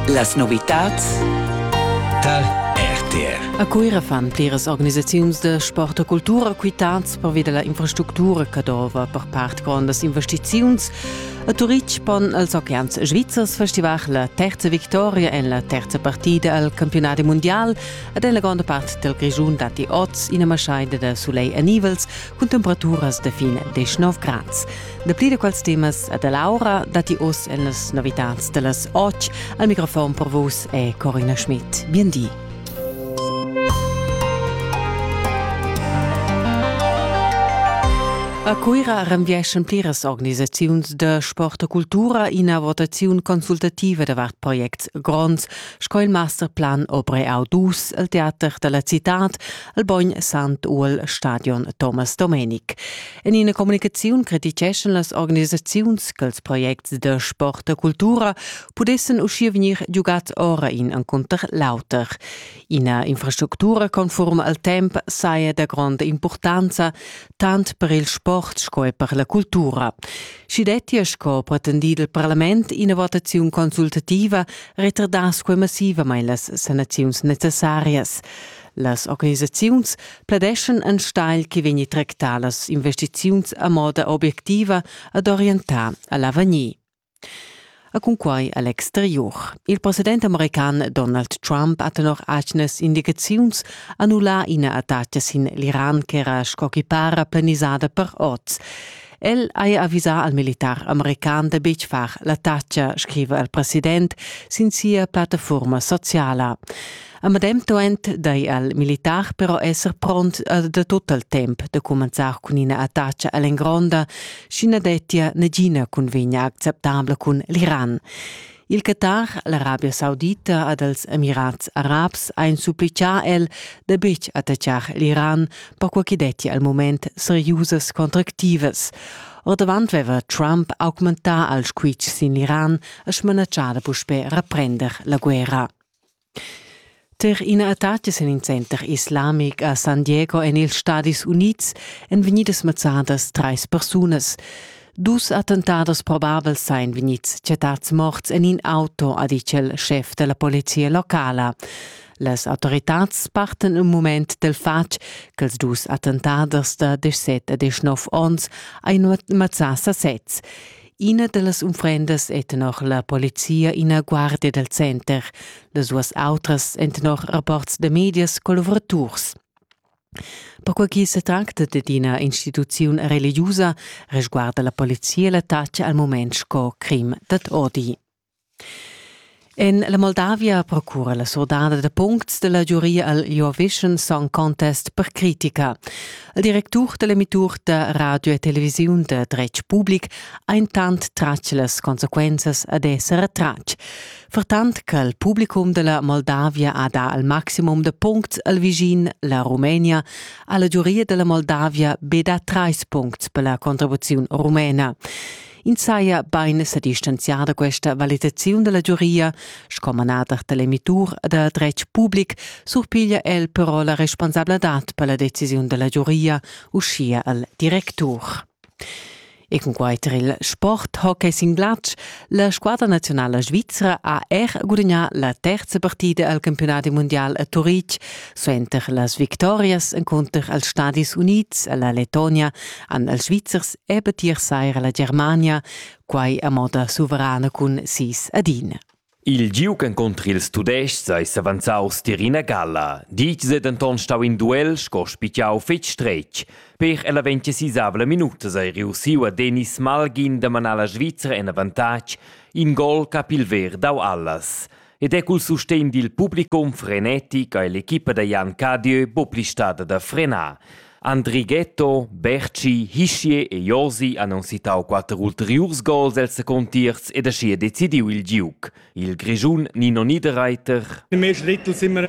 Las novitads tar RTR. A Cuira fan pliras organisaziuns da sport e cultura quitads pervi da la infrastructura che dova per part grondas investiziuns. A Turitg pon els Oceans Svizzers festivar la terza victoria en la terza partida al campionat mundial ed en la gronda part del Grischun datti oz ina maschaida da soleil e nivels cun temperaturas da fin 19 grads. Dapli da quels temas e da Laura datti oz en las novitads da las 8. Al microfon per vus è Corina Schmidt. Bien di. A Cuira renvieschan pliras organisaziuns da sport e cultura ina votaziun consultativa davart projects gronds sco il masterplan Obre Audus, il teater dalla citad, il bogn Sant Uol Stadion Thomas Domenic. En ina communicaziun criticheschan las organisaziuns ch'ils projects da sport e cultura pudessen uschia vegnir giugats ora in encunter l'auter. Ina infrastructura conforma al temp saja da gronda importanza tant per il sport sco er per la cultura. Schi dettia sco pretendido il Parlament ina votazione consultativa retardass quei massivamain las sanaziuns necessarias. Las organisaziuns pladeschan enstagl che vegni tractar las investiziuns a moda obiectiva ad orientar a l'avegnir. A cunquai a l'exterior. Il president american Donald Trump ha tenor atgnas indicaziuns annullà ina attacca sin l'Iran ch'era sco chipara planisada per oz. El haja avisà al militar american da betg far la tacha, scriva il president sin sia plattafurma sociala. A medem temps dai al militar però esser pront da tut il temp da cumenzar cun ina attacca all'engronda, sch'i na dettia nagina cunvegna acceptabla cun l'Iran. Il Qatar, l'Arabia Saudita ed els Emirats Arabs ein supplicà el da betg attaccar l'Iran, perquai ch'i detti al mument seriusas contractivas. Ordavant veva Trump augmentà il squitsch sin l'Iran e smanatschà da puspè reprender la guerra. Per ina attacca sin in center islamic a San Diego en ils Stadis Unids èn vegnidas mazzadas trais persunas. Dus attentados probabels sain vegnids chattads morts en in auto, ha ditg il schef da la polizia locala. Las autoritads parten un mument del fatg che els dus attentaders da 17 e 19 onns ein mazzà sasezs. Ina dallas unfrendas è tenor la polizia ina guardia dal center, las duas autras èn tenor rapports da medias collavuraturs. Perquai che se tracta d'ina ina instituziun religiusa, resguarda la polizia l'attacca al moment sco crim dad odi. En la Moldavia procura la surdada da puncts da la giuria al Eurovision Song Contest per critica. Il directur da l'emittur da radio e televisiun da dretg public ha intant tratg las consequenzas ad esser retratg. Vertant che il publicum da la Moldavia ha dà al maximum da puncts al vischin la Rumenia, ha la giuria da la Moldavia be dà trais puncts per la contribuziun rumena. Ins saja bain sa distanzià da questa valitaziun da la giuria, sco manader da l'emitur da dretg public surpiglia el però la responsabladad per la decisiun da la giuria, uschia al directur. E cunquai tar il sport hockey sin glatsch, la squadra nazionala svizra ha er gudagnà la terza partida al campiunat mundial a Turitg, Suenter las victorias encunter els Stadis Unids alla Letonia han els Svizzers ebbe tier sair alla Germania, quai a moda suverana cun sis adina. Il giug encunter ils Tudestgs ei s'avanzaus tier ina galla. Ditgs ei denton stau in duel sco spitgau fetg stretg. Per ella ventisisavla minutas ei reussiu a Denis Malgin da manar la Svizra en avantatg, in gol cap il ver dau allas. ed è cul sustegn dil publicum frenetic ha l'equipa da Jan Cadieu buca stada da frenar. Andri Ghetto, Berci, Hischie e Josi han unsitau quatter ulteriurs gols els secuntiers ed aschia decidiu il giug. Il Grischun Nino Niederreiter. Im ersten Drittel sind wir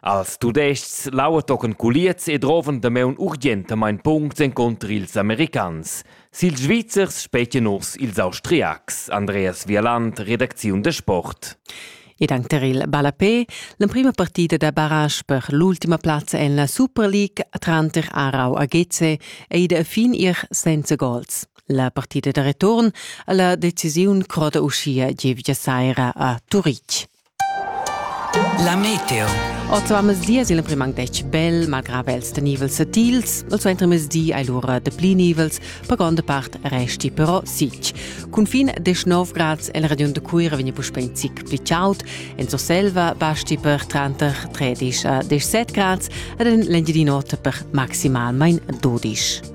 Als Tudestgs lauetocken culiez e droven damaun urgentamain puncts encunter ils Americans. Sil Svizzers spetgen urs ils Austriacs. Andreas Vialand, Redakziun de Sport. Ed anche tar il ballapé, l'emprima partita da barrage per l'ultima plazza en la Super League tranter Aarau a Geze è ida a fin ir senza gols. La partita da return ha la decisiun croda uschia gievgia saira a Turitg. La meteo. Oz va mesias il primang dec bel, malgrad els da nivels satils, il suenter mesdi hai lura de pli nivels, per gronda part resti però sic. Cun fin 19 grads el region de Cuira vegni puspe in zic pli chaud, en Surselva basti per tranter 13 a 17 grads ed en l'Engiadin'Ota per maximalmain 12.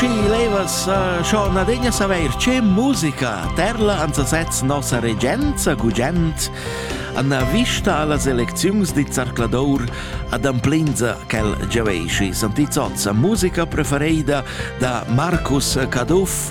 Aschi levas uh, schon adegna saveir che musica terla ans sez nossa regenza gugent Anna vista alla selecziuns di Zarcladour ad amplinza quel giavesci Santi Zozza, musica preferida da Marcus Caduff